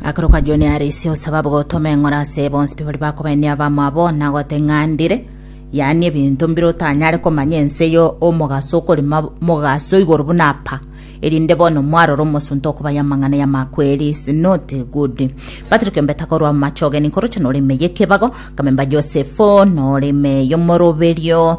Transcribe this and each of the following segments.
Akoroka Joni arisi osababu gotoma eng'ora ase bonsi bari bakobainia abamwabo na goteng'andire yaani ebinto mbire otanyare komanya ense yo omogaso okori ma- mogaso igoro buna apa erinde bono mwarora omosunte okobaya amang'ana y'amakweri is not good Patrick Mbeta korwa amache ogeni nkoroche noreme yekebago kamemba Joseph noreme yomoroberio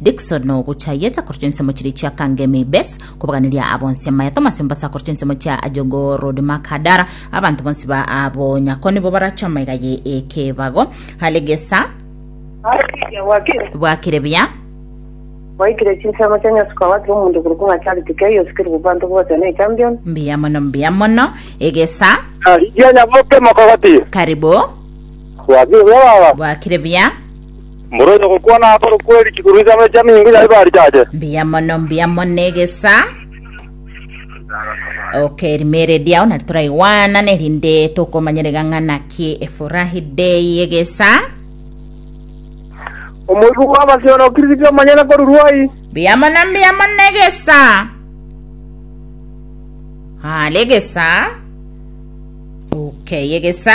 Dickson ogochayeta korwa chinsemo chiria chia Kangemi Base kobaganeria abonsi amaya Thomas Ombasa korwa chinsemo chia Ajogo Road Makadara abanto bonsi ba abo nyako nibo barache amaiga ye ekebago Halegesa bwakire buya Waikire chinsemo chia Nyasuka watira omonto korokwa ng'a Charity Kei osikire obobanto bwose na echampion. mbuya mono mbuya mono egesa Rigianya moke mokogoti. karibu Bwakire buya baba. bwakire buya Mboro y'ogokwana akorwe kweri chigurube chia Benjamini nigo yaye barichache. Mbuya mono, mbuya mono egesa. Okay, rimeredi ao nari toraigwanane rinde tokomanyerega ng'ana ki efurahi day egesa. Omoibi bw'amasiyo nokirisiti omonyene korurwa ai. Mbuya mono, mbuya mono egesa. Hale egesa. Okay, egesa.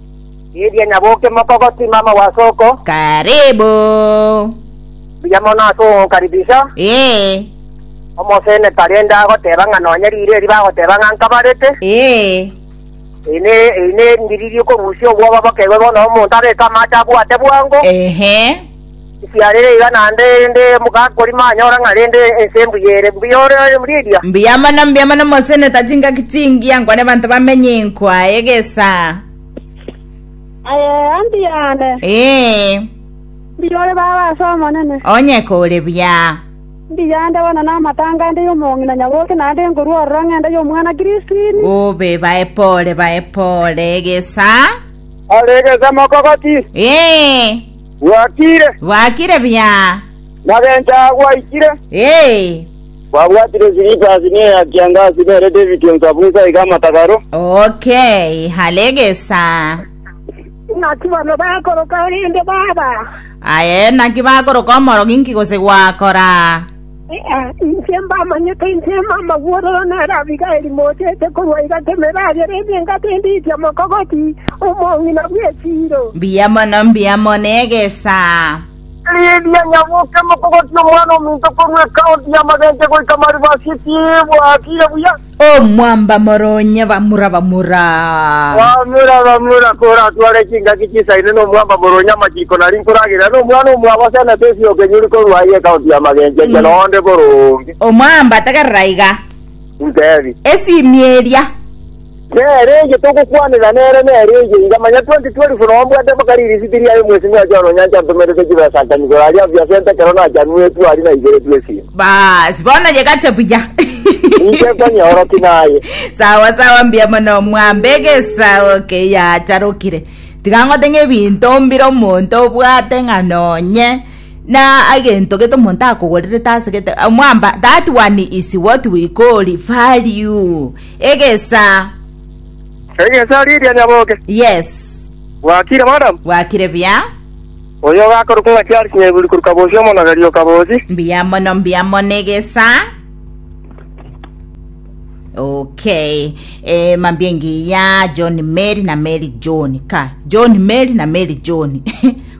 Eria nyaboke mokoko timama wa soko. Karibu. Buya mono ase ogokaribisha. Ee. Omosene tarende agoteba ng'a nonya riire eri bagoteba ng'a nkabarete. Ee. Eri ne eri ne ndiri riokorusia obwoba bokerwe bono omonto abeke amache abwate bwango. Ehe. Nkiarire iga naende, erinde mogakorima anyore ng'a rende ense embuya ere. Mbuya ore Lydia. Mbuya mono, mbuya mono moseneta chingaki chingiya nko ne banto bamenye nko aye egesa. Aye anti yane. Ee. Mbuya ore baba ase Omonene. Onye kore buya. Mbuya ande bono naamate ango ande y'omong'ina nyaboke naende nkorwa ororo ng'ende y'omwana Kristo ime. Obe bae pore, bae pore egesa. Ore egesa mokogoti. Ee. Bwakire, Bwakire buya. magencho aa gwaikire. Ee. Kwabwatire silipasi ne ya kiangasi nere David onsabunsa iga amatagaro. Okay, halegesa. Naki bano bakoroka rende baba. Aye, naki bakoroka omorogi nki gose gwakora? Ee, inche mbamanyete, inche Emamagworo, nere Abigaili, mochete korwa egati emeragera ime engata endiiche omokogoti, omong'ina bw'echiiro. Mbuya mono, mbuya mono egesaa. Lidia Nyaboke, mokogoti omwana ominto korwa ekaonti ya Magenche goika Maribasi, tibwatire buya. Omwamba mora onyeba mura bamura. Bamura bamura koratware chingaki chisaine nomwamba mora onya amachiko nari nkoragerera nomwana omwabo ase enete esio okenyuri korwa aye ekaunti ya magencho eria na onde boro onge. Omwamba tegerera iga. Ntebi. Esimi eria. Nere eye togokwanera nere nere eye iga manya 2012 nao mbwate mpaka ririsiti riaye mwesimi oye ononyancha ntomerete chibesa nkanigora aria aviasente ekero nachanwetwe aria naigeretwe esimi. Baas, bono yegate buya. Inche nkonyeoroki naye. sawa sawa mbuya mono mwambe egesago keyatarokire tiga ngote ng'a ebinto mbire omonto obwate ng'a nonye na egento gete omonto akogorerete ase gete eh, mwamba that one is what we call value egesa Egesa riria nyaboke. yes Bwakire madam. bwakire buya Oyo ogakorokwa ng'a chiare chinyaiguri korwa bosio omonogeri o kaboochi. Mbuya mono, mbuya mono egesa. Okay. Eh, mambia engiya John Mary na Mary John. Ka John Mary na Mary John.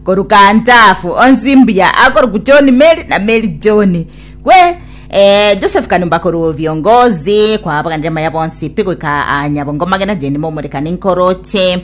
Koruka ntafu onsi mbuya akoruku John Mary na Mary John. Kwe eh, Joseph Kanumba koruo viongozi kwa abaganire maya bonsi pigwika anyabongo magena jeni momorekani nkoroche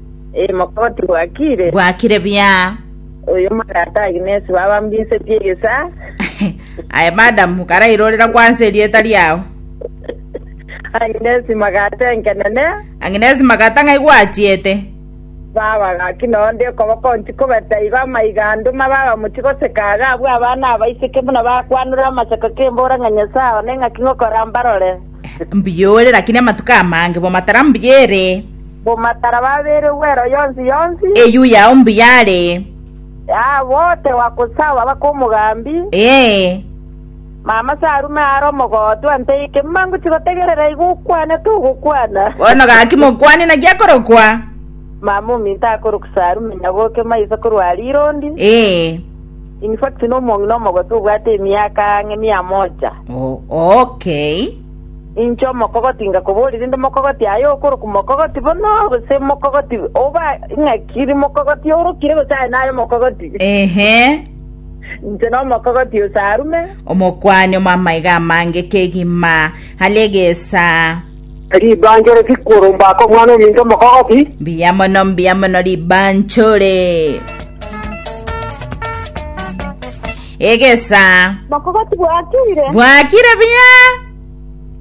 Ee, mokoti bwakire. Bwakire buya. Oyo omotata Agnes baba mbinsetie egesaa. Aye madam, karairorera kwansa erieta riao. Agnes magate nkenene. Agnes magata ng'ai gwatiete. Baba gaki nonde okoboko ntikobeta igo amaiga ande ma baba moti goseka aga abwo abana abaiseke buna bakwanora amaseko kembora ng'a Nyasaye one ng'aki ng'okora mbarore. Mbuya ore, lakini amatuko amange bwa matara mbuya ere. Bomatara babeire bw'ero yonsi yonsi. Eyio yao mbuyaare. Aa bote wakosaba bake omogambi. Ee. Mama sarume are omogotu anteike mangochi gotegerera igo okwanete ogokwana. Bono gaki mokwane naki akorokwa. Mama ominto akorokwa sarume nyaboke maiso korwa rirondi. Ee. In fact nomong'ina omogotu obwate emiaka ang'e mia moja. O, okay. Inche omokogoti ngakoboria, rinde omokogoti aye okorokwa mokogoti bono, gose mokogoti oba ng'aki mokogoti orokire, gose aye naye omokogoti? Ehe, Inche nomokogoti ose arume. omokuani omw'amaiga amange kegima are egesaa. Ribanchore rikoromba aka omwana ominto omokogoti. Mbuya mono, mbuya mono ribanchore. Egesaa. Bokogo tibwakire. Bwakire buya.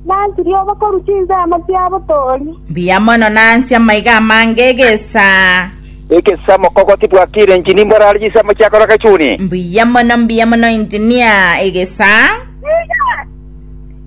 Nansi ria obokoru chinsemo chia botoori. Mbuya mono nansi amaiga amange egesaa. Egesaa mokogo tibwakire engineer mborare chinsemo chia koroka chuni. Mbuya mono mbuya mono engineer egesaa.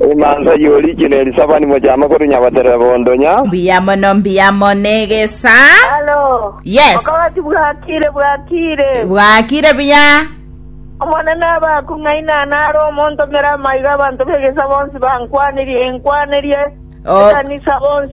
Omonto oyio orikire ne Elisabani mochame korwa nyabatere bondonya. Mbuya mono mbuya mono negesa. Halo. Yes. Okogati bwakire bwakire. Bwakire buya. Omonene abe aku ng'aina naro omontomere amaiga abanto b'egesa'a bonsi bankwanirie enkwanerie. Ekanisa bonsi.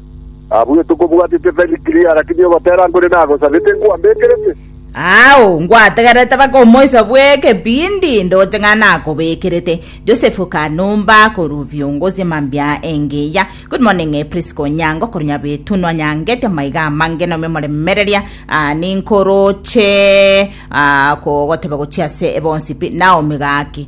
Abwo etokobwatete very clear, lakini ogotera nkore nagosabete nkwabekerete. Ao ngwategerete mpaka omoiso bw'ekebindi ndoche ng'a nakobekerete. Joseph Kanumba korwa Viongozi Mambia Engiya. Good morning eh, Prisca Onyango korwa Nyabitu nwanyangete amaiga amange nomia omoremereria ah, ninkoroche ah, kogoteba gochia ase ebonsi pi Naomi gaki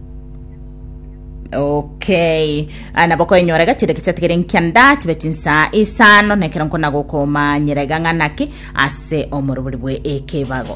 Okay. Ah, nabo koenyora iga chireke chiatigere nkianda chibe chinsa isano nekero nkona gokomanyera iga ng'a naki ase omorobori bwe ekebago.